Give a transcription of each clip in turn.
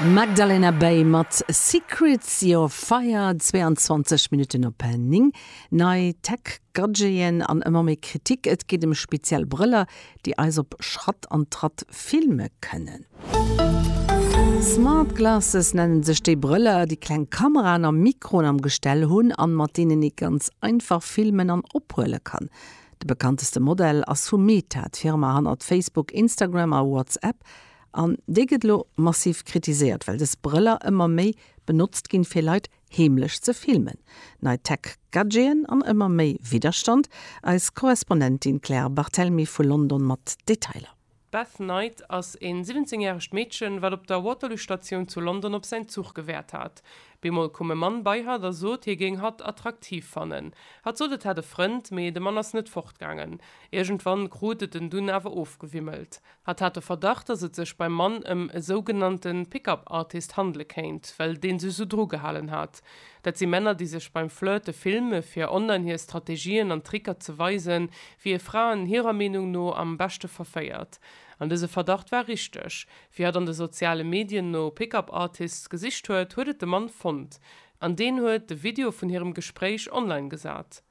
Magdalena Bay mat Secrets Your Fire, 22 Minutten op 9. Nei Tech-Gadgeten an ëmmer méi Kritik, et geet ëm speziell Brëller, déi eis op Schratt an Tratt filme kënnen. Smart Glasses nenne sech déi Brëller, déi kleng Kameraen a Mikroen am Gestell hunn an mat deenen ee ganz einfach filmen an ophuele kann. De bekannteste Modell ass vu Meta, d'Firma hannert Facebook, Instagram a WhatsApp, an déi gëtt elo massiv kritiséiert, well dës Brëller ëmmer méi benotzt ginn, fir Leit heemlech ze filmen. Nei Tech-Gadgeten an ëmmer méi Widderstand. Eis Korrespondentin Claire Barthelmy vu London mat Detailer. D'Beth Knight ass en 17 järegt Meedchen, wat op der Waterloo Statioun zu London op säin Zuch gewaart hat. Bemol koum e Mann bei hatt a sot, hie géing hatt attraktiv fannen. Hatt sot, et hätt e Frënd, mee de Mann ass net fortgaangen. Iergendwann krut et en dunn awer ofgewimmelt. Hatt hat de Verdacht, dass et sech beim Mann ëm e sougenannte Pick-up Artist handele kéint, well dee sech esou drugehalen hat. Dat si Männer, déi sech beim Flirte filme fir online hir Strategien an Tricker ze weisen, wéi ee Fraen hirer Meenung no am beschte verféiert. An dëse Verdacht war richteg. Wéi hatt an de soziale Medien no Pickup Artists gesicht huet, huet et de Mann fonnt. An deen huet de Video vun hirem Gespréich online gesat.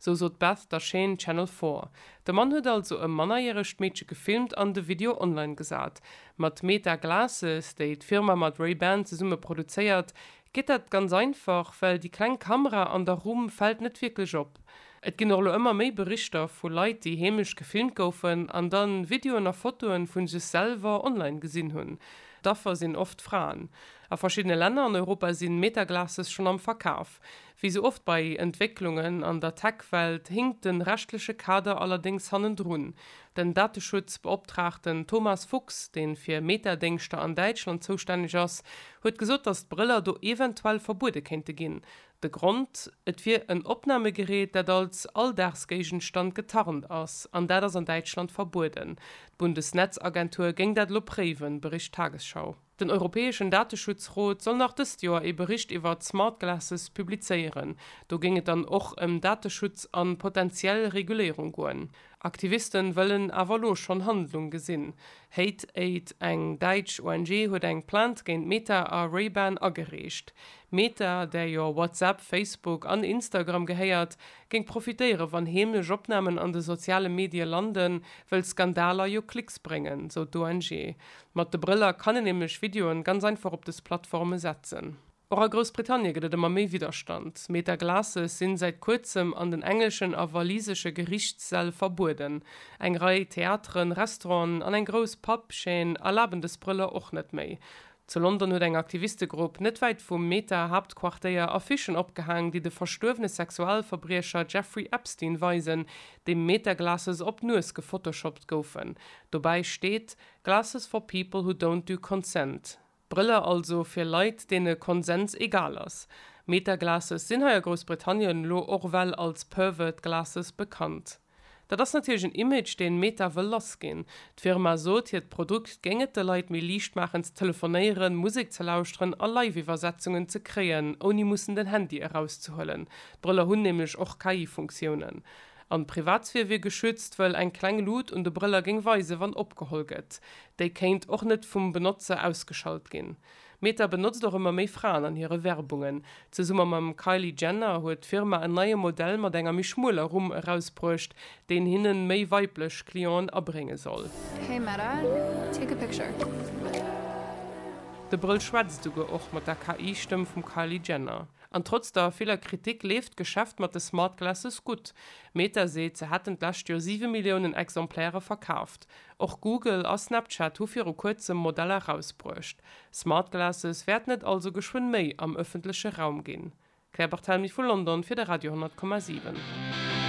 Sou sot d'Beth der Chaîne Channel Four. De Mann huet also e mannerjäregt Meedche gefilmt an de Video online gesat. Mat Meta Glasses, déi d'Firma mat Ray-Ban zesumme produzéiert, geet dat ganz einfach, well déi kleng Kamera an der Rumm fält net wierklech op. Et ginn och elo ëmmer méi Berichter vu Leit, déi heemlech gefilmt goufen an dann Videoen a Fotoen vun sech selwer online gesinn hunn. D'Affer sinn oft Fraen. A verschiddene Länner an Europa sinn Meta Glasses schonn am Verkaf. Wéi sou oft bei Entwécklungen an der Tech-Welt hinkt den rechtleche Kader allerdéngs hannendrun. Den Dateschutzbeoptraagten Thomas Fuchs, deen fir Meta-Déngschter an Däitschland zoustänneg ass, huet gesot, datt d'Brëller do eventuell verbuede kéinte ginn. De Grond, Et wier en Opnahmegerät, dat als Alldagsgéigenstand getarnt ass, an dat ass an Däitschland verbueden. D'Bundesnetzagentur géing dat elo préiwen, bericht d'Tagesschau. Den europäeschen Dateschutzrot soll nach dëst Joer ee Bericht iwwert smart glasses publizéieren. Do géing et dann och ëm Dateschutz a potentiell Reguléierung goen. Aktivisten wëllen awer elo schonn Handlung gesinn. Hate Aid, eng däitsch ONG, huet eng Plainte géint Meta a Ray-Ban agereecht. Meta, där jo WhatsApp, Facebook an Instagram gehéiert, géing profitéieren, wann heemlech Opnamen an de soziale Medie landen, wëll Skandaler jo Klicks bréngen, sou d'ONG. Mat de Brëller kann een nämlech Videoen ganz einfach op des Plattformen setzen. Och a Groussbritannien gëtt et ëmmer méi Widderstand. Meta Glasses sinn säit kuerzem an den englischen a walisesche Gerichtssäll verbueden. Eng Rei Theateren, Restauranten an eng grouss Pub Chaîne erlaben des Brëller och net méi. Zu London huet eng Aktivistegrupp net wäit vum Meta Haaptquartéier Affichen opgehaang, déi de verstuerwene Sexualverbriecher Jeffrey Epstein weisen, dem Meta Glasses op d'Nues gefotoshoppt goufen. Dobäi steet. Glasses for people who don't do consent, Brëller also fir Leit, deene Konsens egal ass. Meta-Glasses sinn hei a Groussbritannien lo och well als pervert glasses bekannt. Dat ass natierlech en Image, deen Meta wëll lass ginn. D'Firma sot, hiert Produkt géing et de Leit méi liicht maachen ze telefonéieren, Musek ze lauschteren a Live-Iwwersetzungen ze kréien, ouni mussen den Handy erauszehuelen. D'Brëller hunn nämlech och KI-Funktiounen. An d'Privatsphär wier geschützt, wëll eng kleng Lut un de Brëller géing weisen, wann opgeholl gëtt. Déi kéint och net vum Benotzer ausgeschalt ginn. Meta benotzt och ëmmer méi Fraen an hire Werbungen. Zesumme mam Kylie Jenner huet d'Firma en neie Modell mat enger méi schmueler Rumm erausbruecht, deen hinnen méi weiblech Clienten abrénge soll. Hey Meta, take a picture. De Brëll schwätzt esouguer och mat der KI-Stëmm vum Kylie Jenner. An trotz der viller Kritik leeft d'Geschäft mat de Smart Glasses gutt. Meta seet, se hätten d'lescht Joer siwe Milliounen Exemplaire verkaaft. Och Google a Snapchat hu viru kuerzem Modeller erausbruecht. Smart Glasses wäerten et also geschwënn méi am ëffentleche Raum ginn. Claire Barthelmy vu London fir de Radio 10,7.